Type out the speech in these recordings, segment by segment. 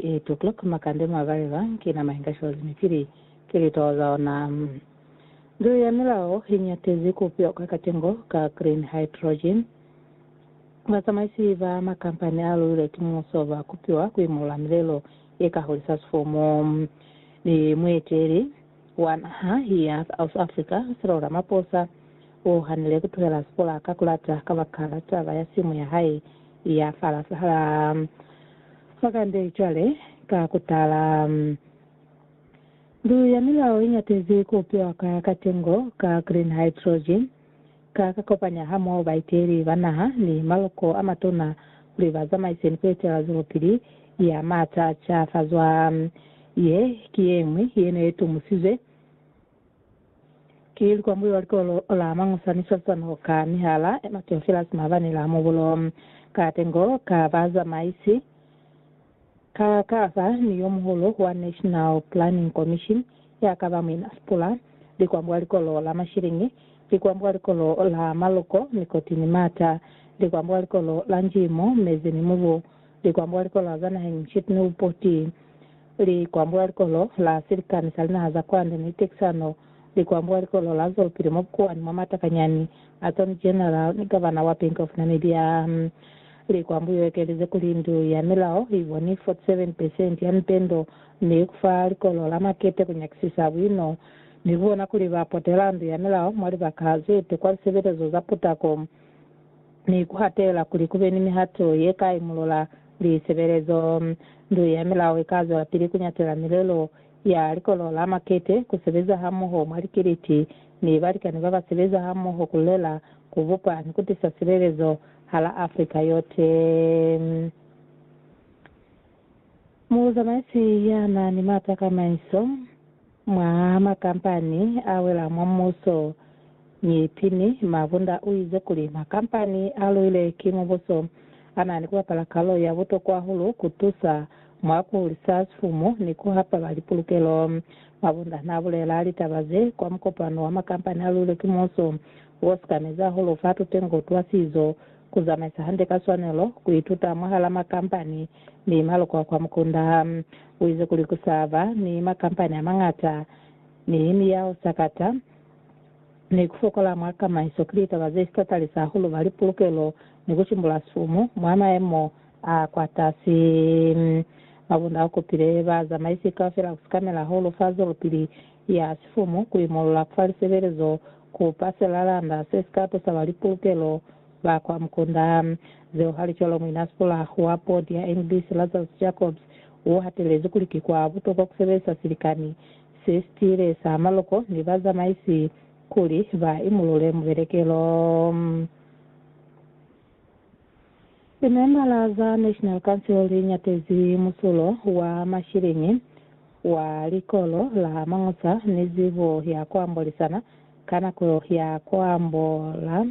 Eight o'clock makande mwa balelwa ki nama inga shozi mi pili ki litwaho za ona. Ndu ya milao i nyatezi ku pioka katengo ka green hydrogen. Bazamaisi ba makampani a luilwe ki muso ba kupiwa ku imolola milelo ye ka hulisa sifumu, mi mueteli wa naha ya South Africa, Cyril Ramaphosa, u hanile ku tuhela sipolaka ku lata kabakala taba ya simu ya hae ya fala fala. Fa kande cwale, ka kutala, Ndu ya Milao iñatezi ku upiwa ka katengo ka green hydrogen, ka ka kopanya hamoho baiteli ba naha ni maloko a matuna kuli ba zamaise ni ku etelela zwelopili ya maata a cafazwa. Ye ki yeñwi ye ne ye tumusizwe. Ki likwambulo la likolo la Mañusa ni swalisano ka mihala e Mateo Filas maabani la mubulo ka tengo ka bazamaisi ka kasa ni yo muhulu wa National Planning Commission ya kaba Muina Spula, likwambulo la likolo la Mashiliñi, likwambulo la likolo la Maluko, Nikoti ni Mata, likwambulo la likolo la Njimo, Mezi ni Mubu, likwambulo la likolo la za naheng Nshit ni Upoti. li kwambuka likolo la silikani sa linaha za kwande ni Texano, li kwambuka likolo la zwelopili mwa bukuwani mwa matakanyani, Attorney General ni Gavana wa Bank of Namibia. Li kwambuka yo ekelize kuli ndu ya milao i boni 47 percent ya mipendo ni kufa likolo la makete ku nyakisisa buino ni kubona kuli ba potela ndu ya milao mwa libaka ze te kwa lisebelezo za putako. mi ku hatela kuli ku be ni mihato ye ka imulula lisebelezo. Ndu ya Milao i ka zwelapili ku ñatela milelo ya Likolo la Makete, ku sebeza hamoho mwa likiliti ni balikani ba ba sebeza hamoho ku lulela, ku bupa, ni ku tisa silelezo hala Afrika yote. Muzamaisi ya na ni m'ata ka maiso. Mwa makampani a wela mwa mubuso ni pini, Mabunda u ize kuli makampani a luile ki mubuso a na ni ku bapala kalulo ya butokwa hahulu ku tusa mwa ku hulisa sifumu ni ku hapa ba lipulukelo. Mabunda n'a bulela litaba ze kwa mukopano wa makampani a luilwe ki muuso wo sikamezi hahulu fa tutengo twa sizo, ku zamaisa hande ka swanelo, ku ituta mwahal'a makampani Mi maloko a kwa mukunda ha u ize kuli ku sa ba ni makampani a mañata ni miyao sakata ni ku fokola mwa kamaiso ki litaba ze si tatalisa hahulu ba lipulukelo ni ku cimbula sifumu mwa mayemo a kwa tasi. Mabunda a kopile bazamaisi kaufela ku sikamela hahulu fa zwelopili ya sifumu ku imolola ku fa lisebelezo ku pasela landa se si ka tusa ba lipulukelo Ba kwa mukunda. Zeo hali cwalo, Muina Spuller wa Bodi ya Englisi, Lazarus Jacobs, u hatelezi kuli ki kwa butokwa ku sebelisa silikani se sitiile sa maloko ni bazamaisi kuli ba imulule mubelekelo. Limembala za National Council li ñatezi musulo wa mashiliñi wa Likolo la Mañusa ni zibo ya ku ambolisana ka nako ya ku ambola.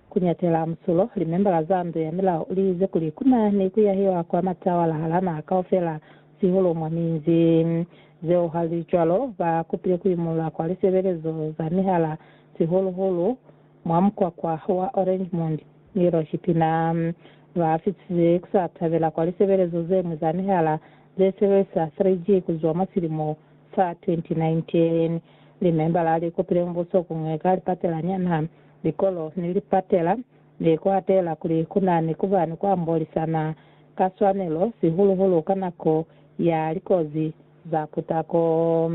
Ku ñatela musulo, limembala za Ndu ya Milao li ize kuli ku na ni ku yahiwa kwa matawala hala naha kaufela, sihulu mwa minzi. Zeo ha li cwalo, ba kupile ku imulula kwa lisebelezo za mihala, sihulu-hulu mwa mukwakwa wa Oranjemund ni Loshipina. Ba fisize ku sa tabela kwa lisebelezo ze ñwi za mihala ze sebelisa 3G ku zwa mwa silimo Fa 2019, limembala li kupile mubuso ku ñweka lipatela nyana, likolo, ni lipatela mi ku atela kuli ku na ni ku ba ni ku ambolisana ka swanelo, sihulu-hulu ka nako ya likozi za putako.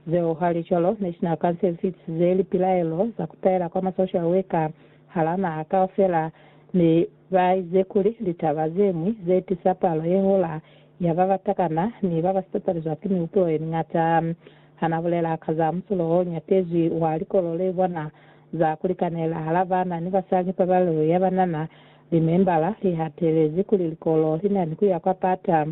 Zeo halicwalo, National Council fitisize lipilaelo za ku taela kwa ma social worker hala naha kaufela, mi ba ize kuli litaba ze ñwi ze tisa palo ye hola Ya ba ba takana ni ba ba sipapalizwa ki mihupulo ye miñata. Ha n'a bulela ka za musulo o ñatezwi wa likolo le bona za ku likanela hala baana ni basali, pabalelo ya ba na na li membala i hatelezi kuli likolo li na ni ku ya kwa pata,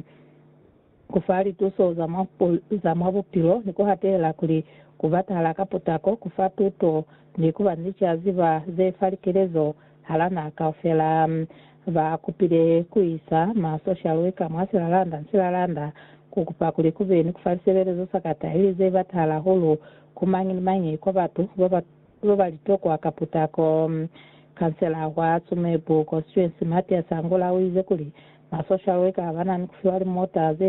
ku fa lituso za mwa bupilo, ni ku hatelela kuli ku batahala ka potako ku fa tuto ni ku ba ni licaziba ze fa likelezo Halana kaufela, ba kupile ku isa ma social worker mwa silalanda ni silalanda ku kupa kuli ku be ni ku fa lisebelezo sa kata ili ze batahala hahulu ku mañi ni mañi kwa batu ba ba ba ba li tokwa ka putako. Kansela wa Tsumeb constituency Mathias Angula u ize kuli ma social worker ba na ni ku fiwa limota ze